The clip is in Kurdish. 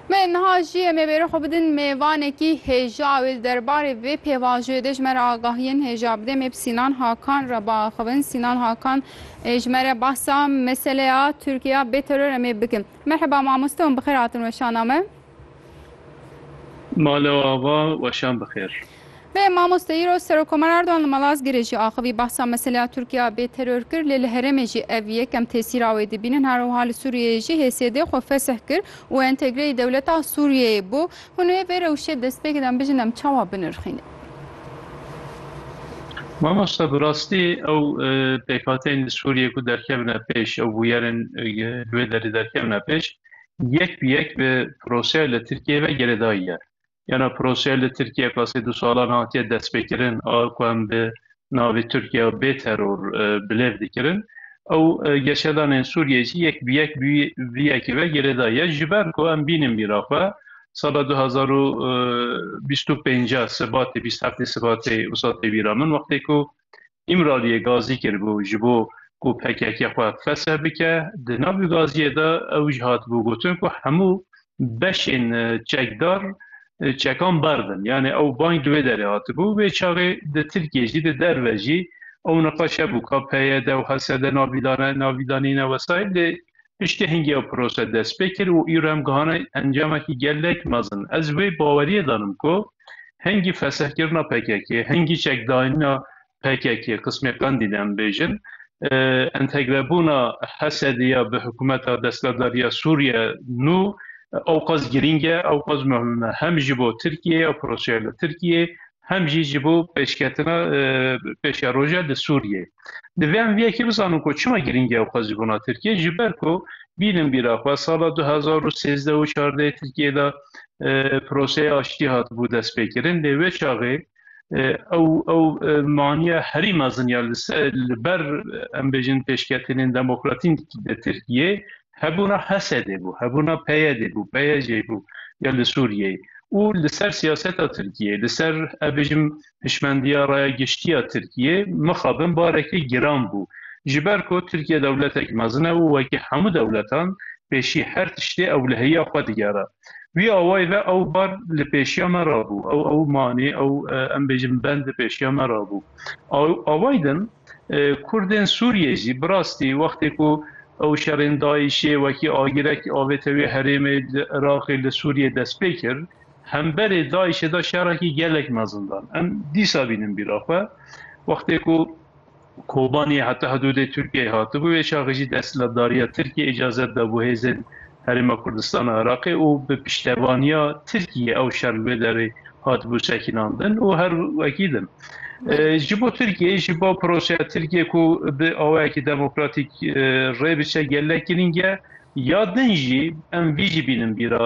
Me niha jî em ê bêrê xwe bidin mêvanekî hêja ew ê li derbarê vê pêvajoyê de ji me re agahiyên hêja bide. Em ê bi Sînan Hakan re biaxivin. Sînan Hakan ê ji me re behsa meseleya Tirkiyeya bê teror em ê bikin. Merheba mamoste hûn bi xêr hatin weşana me. Mala ava weşan bi xêr. Vê mamosteyî ro Serokkomer Erdogan li Malazgirê jî axivî behsa meseleya Tirkiya bê teror kir lê li herêmê jî ev yekem tesîra wê dibînin her wiha li Sûriyeyê jî hêsiyedê xwe fesih kir û entegreyî dewleta Sûriyeyê bû hûn ê vê rewşê destpêk dan bijin em çawa binirxînin. Mamosta bi rastî ew pêkhateyên li Sûriyê ku derkevine pêş ew bûyerên li wê derê derkevine pêş yek bi yek bi proseyê li Tirkiyeyê ve gerê dayiye Yena proseya li Tirkiye ka sê du salan hatiye destpêkirin a ku em bi navê Tirkiye bê teror bilêv dikirin ew geşedanên Sûriyê jî yek bi yek vî yekê ve girêdayî ye. Ji ber ku em bînin bîra xwe sala du hezar û bîst û pênc sibatê bîst heftê sibatê wisa tê bîra min wextê ku Îmraliyê gazî kiribû ji bo ku pkk xwe fesih bike. Di nav vî gaziyê de ew jî hatibû gotin ku hemû beşên çekdar çekan berdin. Yanê ew bang di wê derê hatibû. Wê çaxê di Tirkiyê jî di derve jî ew niqaş hebû ka PYD û HSD navîdanîne wesayî lê Piştî hingê ew pirose dest pê kir û îro em gihane encamekî gelek mezin. Ez wê baweriyê danim ku hingî fesehkirina pkk-ê, hingî çekdaînina pkk-ê, qismê qendîl em bêjin, entegrebûna Hesedê ya bi hikûmeta destberdar ya Sûriye nû ewqas girîng e, ewqas muhim e, hem ji bo Tirkiyeyê, ew piroseya li Tirkiyeyê, hem jî ji bo pêşketina pêşeroja li Sûriyeyê. Divê em vê yekê bizanin ku çima girîng e ew xwezîbûna Tirkiyeyê ji ber ku bînin bîra xwe sala du hezar û sêzdeh û çardehê Tirkiyeyê de proseya aştiyê hatibû destpêkirin lê wê çaxê ew ew maniya herî mezin ya li ber em bêjin pêşketinên demokratîk di Tirkiyeyê hebûna HSD'ê bû, hebûna PYD'ê bû, PYJ'ê bû ya li Sûriyeyê û li ser siyaseta Tirkiyeyê, li ser ez bêjim hişmendiya raya giştî ya Tirkiyeyê mixabin barekî giran bû. Ji ber ku Tirkiye dewletek mezin e û wekî hemû dewletan pêşî her tiştê ew li hêya xwe digere. Wî awayî ve ew bar li pêşiya me re bû, ew ew manê, ew em bêjim bend li pêşiya me re bû. Awayî din. Kurdên Sûriyê jî bi rastî wextê ku ew şerên DAIŞ'ê wekî agirek avête wê herêmê li Iraqê li Sûriyê destpê kir, hemberê DAIŞ'ê da şerekî gelek mezindan. Em dîsa bînin bîra xwe. Wextê ku Kobanî heta hidûdê Tirkiyeyê hatibû, wê şaxê jî desthilatdariya Tirkiyê îcazet dabû hêzên Herêma Kurdistana Iraqê û bi piştevaniya Tirkiyê ew şer li wê derê hatibû sekinandin û her wekî din ji bo Tirkiyeyê ji bo projeya Tirkiyê ku bi awayekî demokratîk rê biçe gelek girîng e ya din jî em vî jî bînin bîra